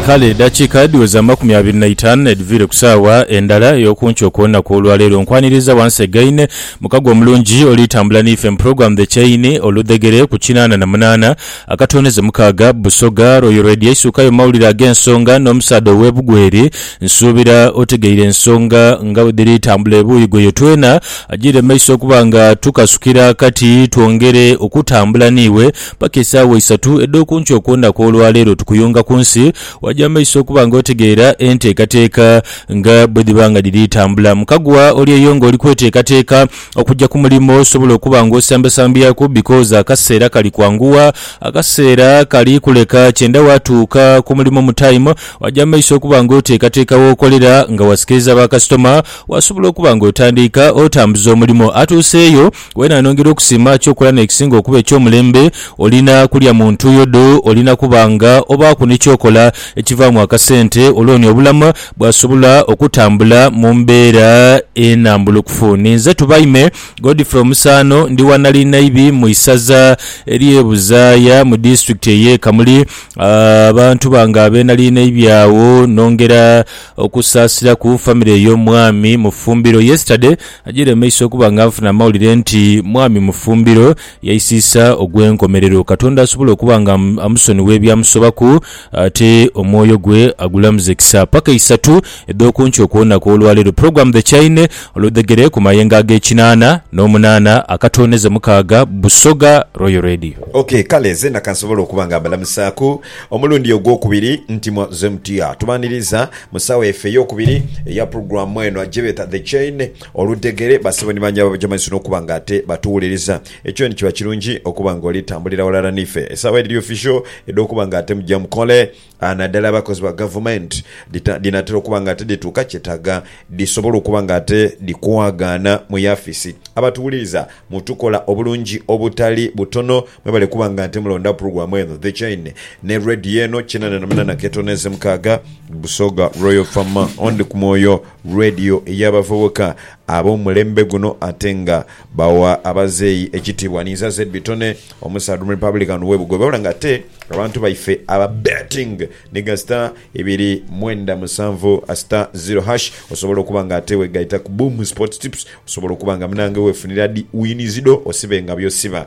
Kale edhakiika dhiweza amakumi abiri na itaanu edhiviire ku saawa endala ey'okunkyo okw'olunaku olwa leero, nkwaniriza wansi egaine mukago omulungi olitambula n'ife mu pulogulaamu The Chain, Oludhegere, ku kinaana na munaana akatooneze mukaaga, Busoga, Royal Radio eisuukayo mu mawulire ag'ensonga n'omusaadha ow'ebugweri. Nsuubira otegeire ensonga nga bwe dhiri tambula ebuuyi ghoyo. Twena agire mu maiso okuba nga tukasukira kati twongere okutambula n'iwe. Paka esaawa isatu edh'okunkyo okwondha kw'olwa leero tukuyunga ku nsi, waja amaiso okuba nga otegeera enteekateeka nga bwe dhiba nga dhiri tambula. Mu kaguwa oli eyo ng'oli kweteekateeka okuja ku mulimo, osobola okuba nga osambasambyaku because akaseera kali kwanguwa, akaseera kali kuleka kyenda waatuuka ku mulimo mu time. Waja amaiso okuba nga oteekateeka w'okolera nga wasikiriza ba kasitoma, wasobola okuba nga otandiika otambuza omulimo. Atuuseeyo. Wena nongera okusiima kyokola n'ekisinga okuba eky'omulembe, olina kulya mu ntuuyo dho, olina kuba nga obaaku ni kyokola ekivaamu akasente olwo ni obulamu bwasobola okutambula mu mbeera enambulukufu. Ninze Tubaime Godfrey Omusaano, ndi wa Nalinayibi mu isaza ery'e Buzaaya mu disitulikiti ey'e Kamuli. Abantu bange ab'e Nalinayibi agho nongera okusaasiraku famire y'omwami Mufumbiro. Yesterday. Agyire mu maiso okuba nga nfuna amawulire nti mwami Mufumbiro yaisiisa ogw'enkomerero. Katonda asobole okuba nga amusonigha ebyamusobaku ate omwoyo gwe agulamuze kisa. Paka eisatu edh'oku nkyo okw'olunaku olwaleero. Program The Chaine oludhegere ku mayengo ag'ekinaana n'omunaana akatooneza mukaaga Busoga Royal Radio. Ok, kale zeena kansobole okuba nga mbalamusaaku. Omulundi ogwokubiri ntimwa ze mutya. Tubaniriza mu sawa yaife eyokubiri eya pulogulamu eno agyebeta The Chain Oludhegere. Basebo ni bangi ababaja maiso nokuba nga ate batuwuliriza. Ekyo nikyiba kirungi okuba nga oli tambulira walala nife. Esawa edhiri official edhokuba nga ate mugya mukole nadala abakozi ba gavumenti dhinatera okuba nga ate dhituuka kyetaga dhisobole okuba nga ate dhikwagaana mu yafisi. Abatuwuliriza mutukola obulungi obutali butono. Mwebale kuba nga nte mulonda puruguramu eno The Chaine ne Radio eno kinana na munana ketono eze mukaaga Busoga Royal Fama Only ku Mwoyo Radio eya bavubuka abo mulembe guno ate nga bawa abazeeyi ekitibwa Ninza Zed Bitone omusaadha omu Republican we Bugobe wabula nga ate abantu baife aba betting niga star ibiri mwenda musanvu star zero hash osobola okuba nga ate wegaita ku Boom Sports Tips osobola okuba nga munange wefunira di wins dho osibe nga byosiba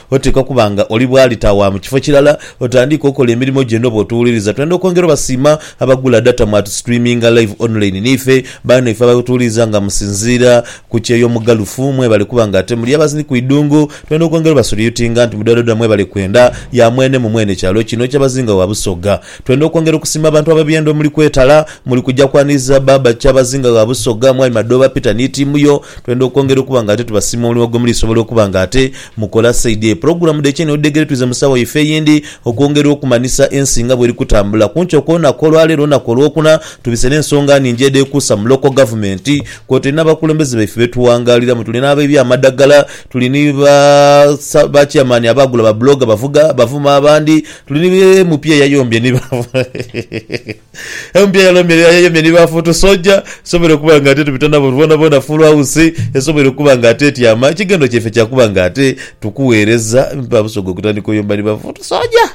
Oteekwa kuba nga oli bwalita wa mu kifo kirala otandiike okola emirimo gyo eno bw'otuwuliriza. Twenda okwongera obasiima abagula data mu atu streaminga live online n'ife. Baanaife abatuwuliriza nga musinziira ku kyeyo omugalufu mwebale kuba nga ate muli abazini ku idhungu. Twenda okwongera obasuliyutinga nti mudhodha mwebale kwenda ya mwene mu mwene kyalo kino Kyabazinga wa Busoga. Twenda okwongera okusiima abantu ab'ebyenda omuli kwetala muli kugya kwaniriza Baaba Kyabazinga wa Busoga, Mwami Madooba Peter ni tiimu yo. Twenda okwongera okuba nga ate tubasiima omulimu gwe muli sobola okuba nga ate Mukola saidi eyo pulogulamu dh'ekyeni odhudhegere twize mu sawa yaife eyindi okwongera okumanhisa ensi nga bweri kutambula. Kunkyo kw'olunaku olwaleero olunaku olwokuna tubise n'ensonga nhingi edhekuusa mu local government kwoteri n'abakulembeze baife betuwangaliramu. Tuli n'abaibye amadhagala, tuli ni ba ba chairman abaagula ba blogger bavuga bavuma abandi, tuli ni MP eyayombye ni ba. Empya ya Lomere ya Yemen ni Bafoot Soldier esoboire okuba nga ate tubita nabo boonaboona Full House esoboire okuba nga ate etyama. Ekighendo kyaife kya kuba nga ate tukuweereza ba Busoga okutandika oyomba ni Bafoot Soldier.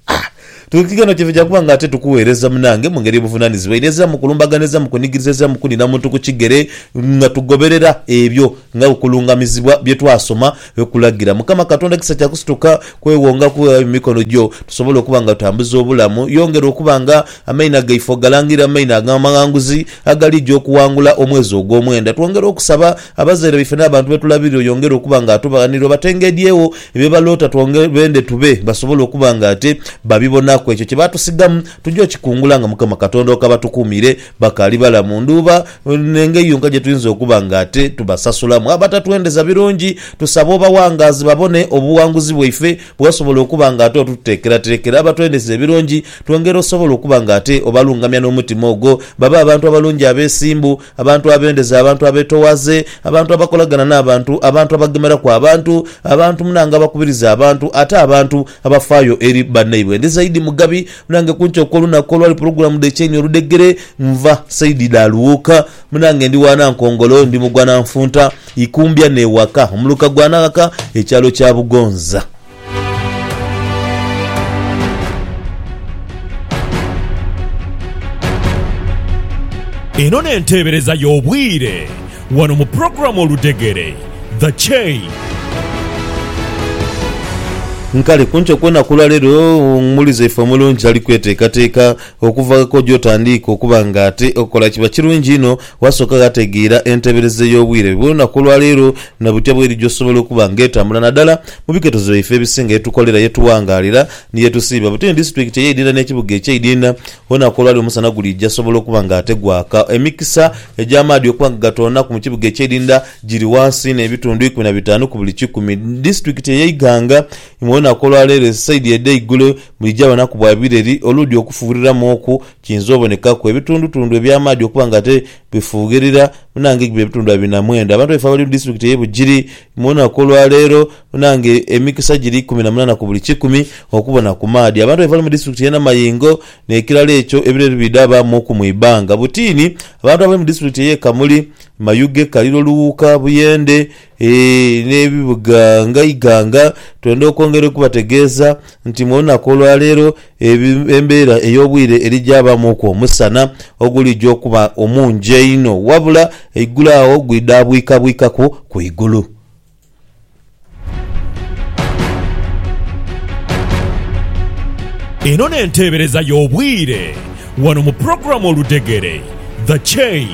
Ah! Tu, ekighendo kyaife kya kuba nga ate tukuweereza munange mu ngeri y'obuvunaanyizibwa eno eziramu kulumbagana, eziramu kunigiriza, eziramu kunina muntu ku kigere nga tugoberera ebyo nga okulungamizibwa bye twasoma. Kulagira Mukama Katonda kisa kya kusituka kwewonga kuwewayo mu mikono gyo, tusobole okuba nga tutambuza obulamu. Yongera okuba nga amaino gaife ogalangirira mu maino ag'amaghanguzi agalija okuwangula omwezi ogw'omwenda. Twongera okusaba abazaire baife n'abantu be tulabirira oyongere okuba nga atubaghanirira obatengedhyegho bye baloota twongere bende tube basobole okuba nga ate babibonaku. Ekyo kye baatusigamu tugya okikungula nga Mukama Katonda okabatukuumire bakaali balamu. Ndhuuba. N'engeri yonka gye tuyinza okuba nga ate tubasasulamu abatatwendeza birungi, tusabe obawangaazi babone obuwanguzi bwaife bwe wasobola okuba nga ate otuteekerateekera abatwendeza ebirungi. Twongera osobola okuba nga ate obalungamya n'omutima ogwo babe abantu abalungi abeesimbu, abantu abendeza, abantu abeetoowaze, abantu abakolagana n'abantu, abantu abagemeraku abantu, abantu munange abakubiriza abantu, ate abantu abafaayo eri bannaibwe. Ndi zaidi Mugabi. Munange kunkyo okwolunaku olwali pulogulamu dhe kyenyi oludhegere nva saidi dha Luwuuka. Munange ndi wa Nankongolo, ndi mugwa Nanfunta, Ikumbya ne waka omuluka gwa Naghaka ekyalo kya Bugonza. Eno n'enteebereza y'obwire. Wano mu program Oludhegere, The Chain. Nkale kunkyo kwona kulwa lero omuwulize waife omulungi ali kwetekateka okuvako gyotandiika okuba nga ate okola kiba kirungi inho wasoka ghategeera entebereza eyobwire bwona kulwa lero na butya bweri gyosobola okuba nga etambula nadala mu biketozo byaife ebisinga yetukolera yetuwangalira ni yetusiiba butini disitulikiti eyeidinda nekibuga ekyeidinda Olunaku olwali omusana gulija sobola okuba nga ate gwaka. Emikisa egy'amaadhi okuba nga gatoonaku mu kibuga eky'Idinda giri wansi n'ebitundu ikumi na bitaanu ku buli kikumi. Disitulikiti eye Iganga imwe olunaku olwa leero esaidi edhe igulo mwija banaku bwa bireri oludi okufughiriramu oku kiyinza obonekaku. Ebitundutundu eby'amaadhi okuba nga ate bifughirira munange biba ebitundu abiri na mwenda. Abantu baife abali mu disitulikiti eye Bugiri Mu lunaku olwa leero munange emikisa giri ikumi na munana ku buli kikumi okubona ku maadhi abantu abe bali mu disitulikiti ye Namayingo n'ekirala ekyo ebiro ebidhaba muku mu ibanga. Butiini abantu abali mu disitulikiti eye Kamuli, Mayuge, Kaliro, Luwuuka, Buyende n'ebibuga nga Iganga twenda okwongera okubategeeza nti mu lunaku olwa leero, Embeera ey'obwire eri gyabaamuku omusana oguligya okuba omungi einho, wabula eigulu agho gwidhaabwikabwikaku ku igulu. Eno n'enteebereza y'obwire wano mu pulogulaamu Oludhegere, The Chain.